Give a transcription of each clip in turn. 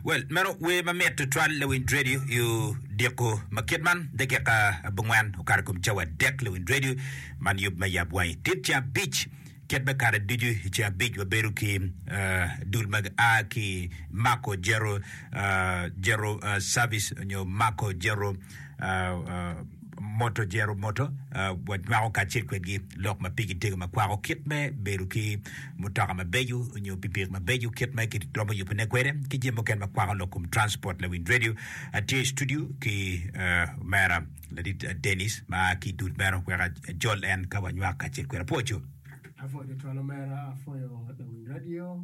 Well, meno wer ma mit tutwal Lewin Radio yo diko ma kit man dakika abongwen okato kom cawa dek Lewin Radio man yub me yab wangi tit ca abic kit me kare ducu ca abic wabedo ki uh, dul mag a ki mako jero uh, jero uh, service onyo mako jero uh, uh, moto jero moto wa nywako kacel kwedgi lok ma pigi tego ma kwako kit me bedo ki mutoka mabeco onyo pikipiki mabeco kit ma ki romo yubo ne kwede ki jami mukene ma kwako lok kom transport lawiny radio atye i studio ki omera ladit Denis ma ki dul meno wek ajol en ka wa nywak kacel kwede pwoco. Apwoco twal omera apwoco lawiny radio.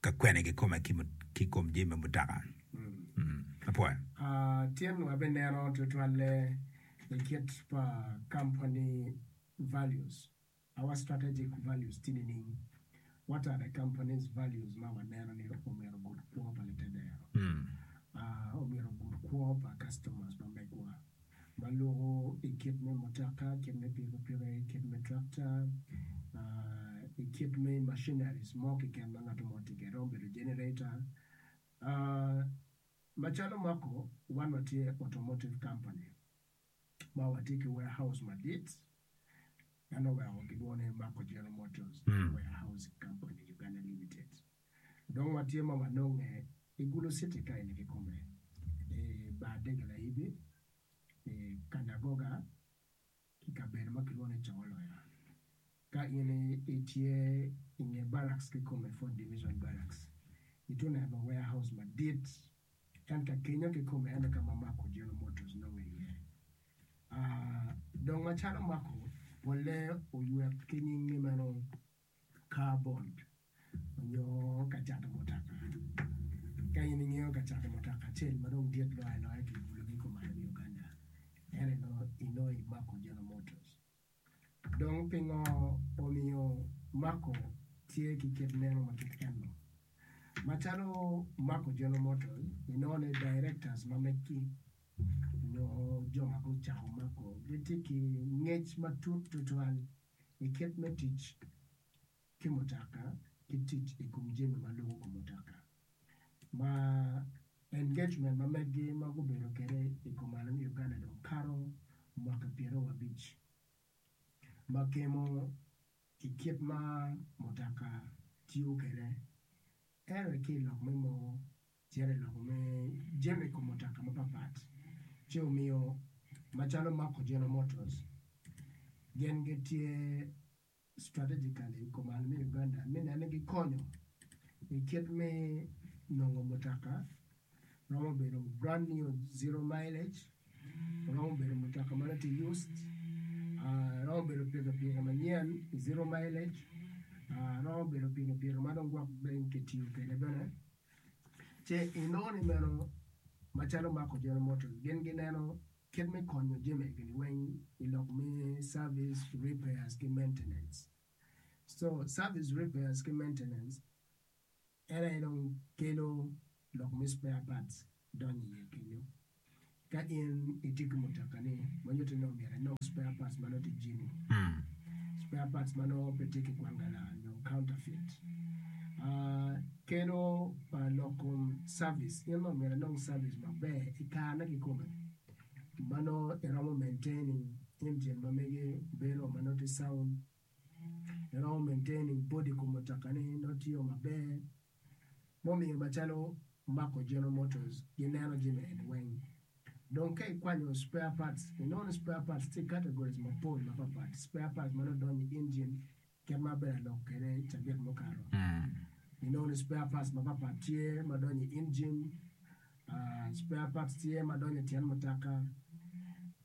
ka kwene kikome ki i kom jami me mutoka. Tyen wabinenon tutwalle i kit pa kampani values, our strategic values tye nining? What are the company's values ma waneno ni omyero ogud kwo pa litedero, omyero ogud kwo pa customers ma megwa? ma luko i kit me mutoka, kit me pikipiki, kit me tractor, i kit me machineries mo keken ma ngat mo tye kwede, romo bedo generator, macalo mako wan watye automotive company ma watye ki warehouse madit, meno oweko gilwongo ni Mako General Motors Warehousing Company Uganda Limited. Dong watye ma wanonge i gulu citi ka eni kikome, i bar Degelayidi, i kanagoga, i kabedo ma kilwongo ni Congo Loya. Ka in itye i nge barracks kikome, Fourth Division Barracks, itye oneno warehouse madit, ento kenyo kikome ene ka ma Marco General Motors nonge iye. Aa, dong macalo Marco, polle oywe ki nyingi meno. Car bond onyo ka cato mutoka. Ka in ingeyo ka cato mutoka acel ma dong dit loyo aloya ki bulu me kumayo me Uganda en aye inongo i Mako General Motors. Dong pingo omiyo Mako tye ki kit neno ma kit eno? Macalo Mako General Motors inongo ni directors ma megi onyo jo ma gucako Mako gitye ki ngec matut tutwal. i kit me tic ki mutoka ki tic i kom jami ma lubo kom mutoka ma engagement ma megi ma gubedo kwede i kom alo me Uganda dong kato mwaki pyeraryo wa abic ma kemo i kit ma mutoka tiyo kwede ento ki i lok me mogo Tyen i loko me jami i kom mutoka mapatpat ci omiyo macalo mako General Motors gin gitye strategically i kom alum Uganda me neno ni gikonyo i kit me nongo mutoka romo bedo brand new zero mileage romo bedo mutoka ma nongo tye used romo bedo pikipiki manyen zero mileage romo bedo pikipiki ma dong gwok bene kitiyo kwede bene. Ce inongo ni meno macalo Marco General Motors gin gineno kit me konyo jami egini weng i lok me service repairs ki maintenance. So service repairs ki maintenance en aye dong kelo lok me spare parts donyo iye kenyo. Ka in itye ki mutoka-ni ma nyutte ni omyero inong spare parts ma nongo tye jini, spare parts ma nongo pe tye ki kwangala nyo counterfeit, keno pa lok kom cavis in nongo omyero inong cavis maber i karene kikome ma nongo iromo maintaining engine ma mege bedo ma nongo tye sound, iromo maintaining body kom mutoka-ni nongo tiyo maber. mumiyo macalo Marco General Motors gineno jami eni weng. Dong ka ikwanyo spare parts, inongo ni spare parts tye i categories mapol mapapat. Spare parts ma nongo donyo i engine kit ma abedo alok kwede cabit mukato, inongo ni spare parts mapapat tye ma donyo i engine, spare parts tye ma donyo i tyen mutoka.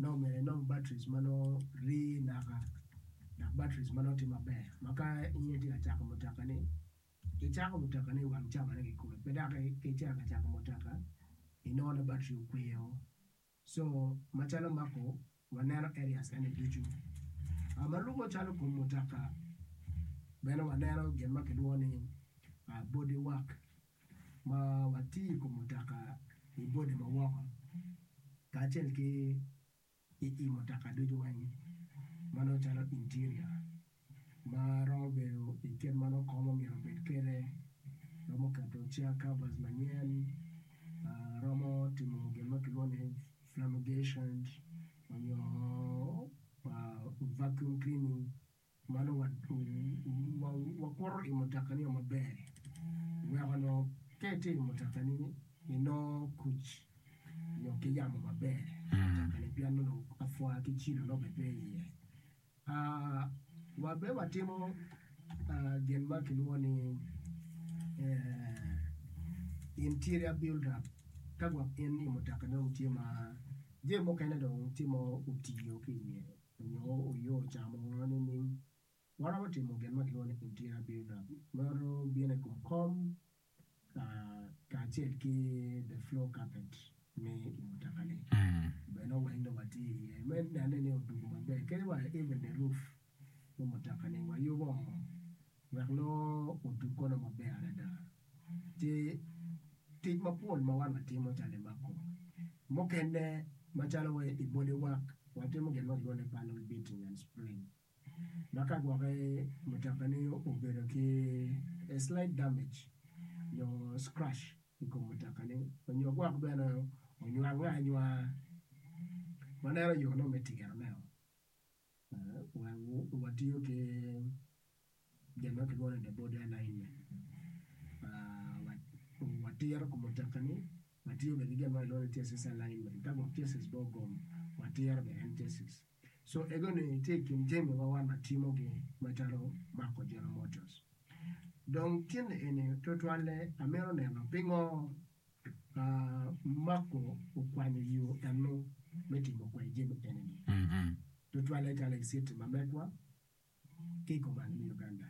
Nongo myero inong batris ma nongo rii naka dok batris ma nongo tye maber ma ka in itye ka cako mutoka-ni, icako mutoka-ni i wang cawane kikome pe dok ka icito ka cako mutoka inongo ni batri okwe o. Co macalo Marco waneno areas eni ducu. Ma lubbe calo kom mutoka bene waneno gin ma kilwongo ni body work ma watiyo i kom mutoka i body ma woko kacel ki i i mutoka ducu weng ma nongo calo interior ma romo bedo i kit ma nongo kom omyero obed kwede, romo keto chair covers manyen, romo timo gin ma kilwongo ni flamigation onyo vacuum cleaning Mano wakuto i mutoka nio maber wek onongo ka itye i mutokani inongo kuc nyo ki yamo maber i mutokani pien nongo apwa ki cilo nongo bene pe iye. Wa bene watimo gin ma kilwongo ni interior build up ka gwok in i mutoka nongo tye ma jami mukene dong tye ma otiyo ki iye. nyo oyo ocamo ngo nining? Waromo timo gin ma kilwongo ni interior build up meno bino i kom kom kacel ki the floor carpet me i mutoka ni bene oweng dong watye i ye me nene ni odugo maber kadi wa even the roof me mutoka ni wayubo ngo wek nongo odug kono maber adada. Tye tic mapol ma wan watimo calo i mako mukene macalo wa i boli wak watimo gin ma kilwongo ni panel beating and spraying ma ka gwoki mutoka ni obedo ki slight damage nyo scratch i kom mutoka ni nyo gwok bene onywang anywanga waneno yo ne me tiro ne o. Watiyo ki gin ma kilwongo ni the body alignment. Watiro kom mutoka-ni, watiyo bene ki gin ma kilwongo ni chassis alignment. Ka gwok chassis bene ogom, watiro bene en chassis. So, ego-ni tye i kin jami ma wan watimogi macalo mako General Motors. Dong cen eni tutwalle amito neno pingo Marko okwanyo yo enno me timo kwai jami enini, tutwalle calo i citi ma megwa ki i komane me Uganda.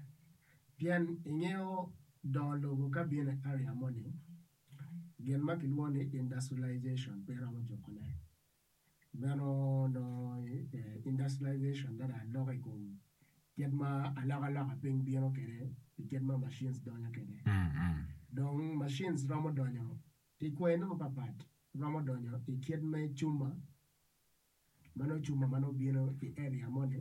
Pien i ngeyo dongo lobo ka bino i area moni, gin ma kilwongo ni industrialization pe romo jukone. Meno dong industrialization dok dong aloko i kom kit ma alokaloka piny bino kwede pi kit ma machines donyo kwede. Dong machines romo donyo ki kwene mapatpat, romo donyo i kit me cuma ma nongo cuma ma nongo bino i area moni.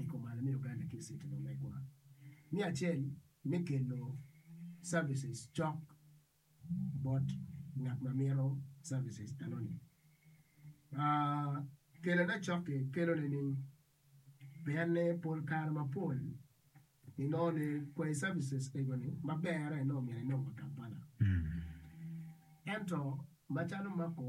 i kom alo me Uganda ki i City ma megwa me acel me kelo services cok bot ngat ma mito services enoni. Kelone cok-ki kelone ni pienne pol kare mapol inongo ni kwai services egoni ma berre nongo myero inong wa Kampala ento macalo mako